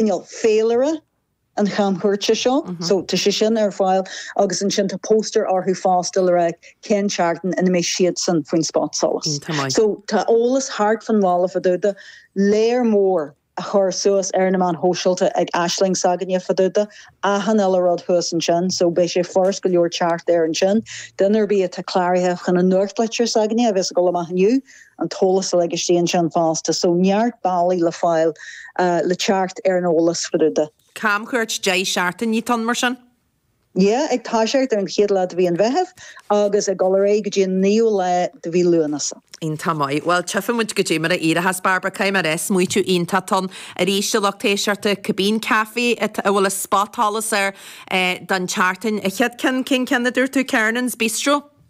cineál féilire an chamchuairte seo, so tá sé sin ar fáil agus ansin tá póstaeir orthu fosta le rá cén seachtain ina mbeidh siadsan faoin spotsolas. So tá eolas thart fán bhaile fá dtaobh de, tá léar mór á chur suas ar na meáin shóisialta ag Aisling s'againne fá dtaobh de, tá achan uile rud thuas ansin, so beidh sé furast go leor teacht air ansin. Duine ar bith atá cláraithe chun an nuachtlitir s'againne a bheas ag dul amach inniu, an t-eolas uilig istigh ansin fosta, so neart bealaí le fáil le teacht ar an eolas fá dtaobh de. Camchuairt deich seachtaine atá ann mar sin? Yeah, ag toiseacht ar an chéad lá de mhí an Mheithimh agus ag dul ar aghaidh go dtí an naoú lá de mhí Lúnasa. Iontach maith. Bhuel, tchífidh muid goidé mar a éireochas, Bairbre, cé mar is maoitiú iontach ann arís do lucht éisteachta cibé café a bhfuil an spotsolas air don tseachtain. An chéad ceann, cén ceann a dúirt tú? Kernan's Bistro?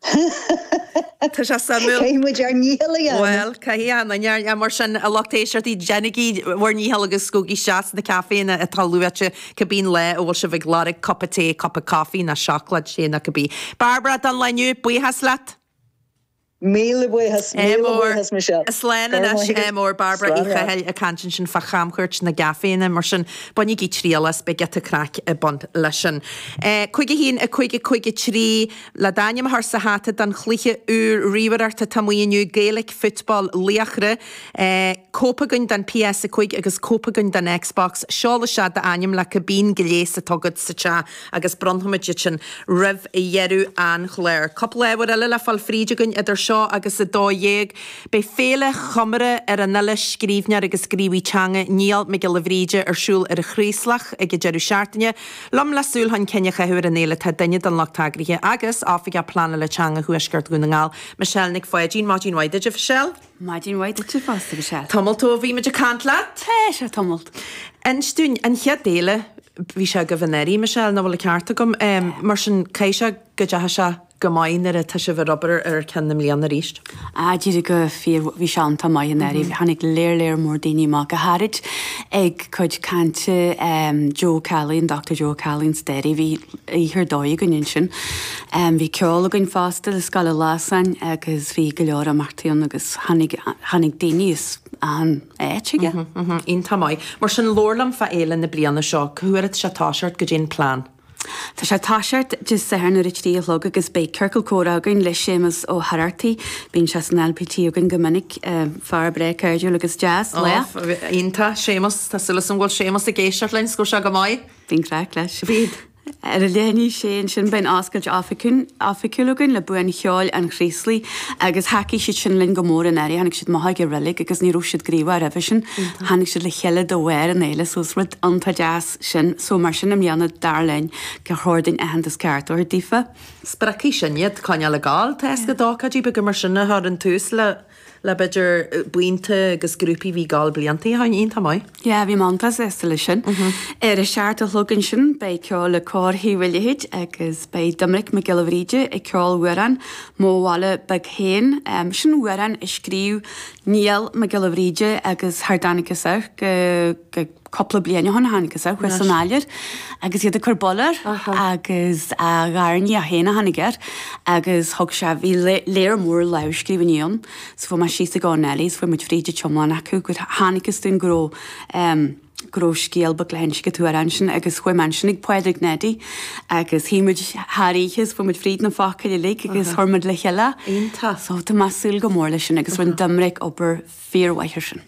Tá sé suimiúil. Caithfidh muid ár ndícheall a dhéanamh. Bhuel, caithfidh, Anna. Ach mar sin, a lucht éisteachta, déanaigí bhur ndícheall agus gabhaigí isteach sna caiféanna atá luaite, cibé lá a bhfuil sibh ag lorg cupa tae, cupa coffee nó seacláid te nó cibé. Bairbre, don lá inniu, buíochas leat. Míle buíochas, míle buíochas, Michelle. Slán anois. MR. Bairbre Uí Chathail ag caint ansin fá chamchuairt na gcaiféanna, mar sin, bainigí triail as, beidh giota craic ag baint leis sin. 51553. Le d'ainm a chur sa hata don chluiche úr ríomhaireachta atá amuigh inniu, Gaelic Football Laochra, cóip againn don PS5 agus cóip againn don Xbox, seol isteach d'ainm le cibé gléas atá agat sa teach agus bronnfaidh muid iad sin roimh dheireadh an chláir. Cúpla ábhar eile le fáil fríd againn idir seo agus 12:00. Beidh Féile Chomóraidh ar an fhile, scríbhneoir agus gníomhaí teanga Niall Mac Giolla Bhríde ar siúl ar an Chraoslach ag an deireadh seachtaine. liom le súil chun cinn a chaitheamh ar an fhéile tá duine den lucht eagraithe agus Oifigeach Pleanála Teanga Thuaisceart Dhún na nGall, Michelle Nic Pháidín. Maidin mhaith duit, a Mhichelle. Maidin mhaith duitse fosta, Michelle. Tamalt ó bhí muid ag caint leat. Tá, sea, tamalt. Inis dúinn, an chéad fhéile, bhí sé agaibh anuraidh, Michelle, an bhfuil an ceart agam? Mar sin, caithfidh sé go dteachaigh sé. go maith, nuair atá sibh ag obair ar cheann na bliana arís? Ah, d'éirigh go fíor, bhí sé iontach maith anuraidh, bhí, tháinig léar léar mór daoine amach, go háirid ag cuid cainte ehm Joe Kelly, an Dochtúir Joe Kelly ins Doire, bhí oíche ar dóigh againn ansin. Ehm bhí ceol againn fosta le Scoil an Ghlasáin agus bhí go leor imeachtaí ann agus tháinig, tháinig daoine as achan áit chuige. Iontach maith. Mar sin, labhair liom fá fhéile na bliana seo, cá huair atá sé ag toiseacht, goidé an plean? Tá sé toiseacht Dé Sathairn ar a trí a chlog agus beidh Ciorcal Comhrá againn le Séamus Ó hArartaigh. Bíonn sé san LPT againn go minic. Fear breá cairdiúil agus deas, le. Iontach, Séamus. Tá súil agam go bhfuil Séamus ag éisteacht linn, 's go raibh sé go maith. Bíonn craic leis. Bíonn. Ar a leath i ndiaidh a sé ansin beidh an oscailt oifigiúil againn le Buíon Cheoil an Chraoslaigh agus thacaigh siad sin linn go mór anuraidh. Tháinig siad amach ag an reilig agus ní raibh siad gníomhach roimhe sin. Tháinig siad le chéile de bharr an fhéile so is rud iontach deas. sin. So mar sin i mbliana, dar linn, gur chóir dúinn aitheantas ceart a thabhairt daofa. Spreagfaidh sin iad coinneáil ag gabháil. Tá éasca d'ócáidí beaga mar sin a chur in tús le, le b'fhéidir buíonta agus grúpaí a bhí ag gabháil blianta ó shoin, iontach maith. Yeah, bhí muid iontach sásta le sin. Ar a seacht a chlog ansin beidh ceol le Cór Thaobh a' Leithid agus beidh Doimnic Mac Giolla Bhríde ag ceol amhrán, Mo Bhaile Beag Féin. Sin amhrán a scríobh Niall Mac Giolla Bhríde agus cha dtáinigtheas air, go, go, cupla bliain ó shoin a tháinig sé thuas san áiléar agus iad ag cur bail air agus a gharnia féin a tháinig air agus thug sé, bhí léar mór lámhscríbhinní ann so chuaigh mé síos ag Eoin Ellie so chuaigh muid fríd an t-iomlán acu agus chonacthas dúinn go raibh go raibh scéal beag le hinse ag tuar ansin agus chuaigh mé ansin ag Pádraig Neidí agus shuigh muid thar oíche so chuaigh muid fríd na focail uilig agus chuir muid le chéile so tá mé súil go mór leis sin agus rinne Doimnic obair fíormhaith air sin.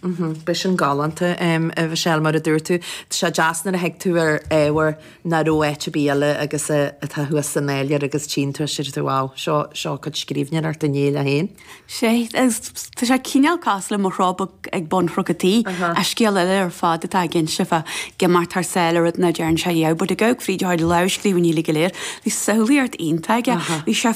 Beidh sin galánta, a Mhichelle, mar a dúirt tú. Tá sé deas nuair a thig tú ar ábhar nach raibh áit ar bith eile agus atá thuas san áiléar agus tchíonn tú é sin, deir tú, wow, seo, seo cuid scríbhneoireacht Néill é féin. Sea, agus tá sé cineál cosúil le Mo Chró Beag ag Bun Chnoc a' Tí, ach scéal eile ar fad atá ag inse fá imeacht thar sáile rud nach dtearn sé, yeah, but ag gabháil fríd a chuid lámhscríbhinní uilig go léir, bhí samhlaíocht iontach aige, bhí sé,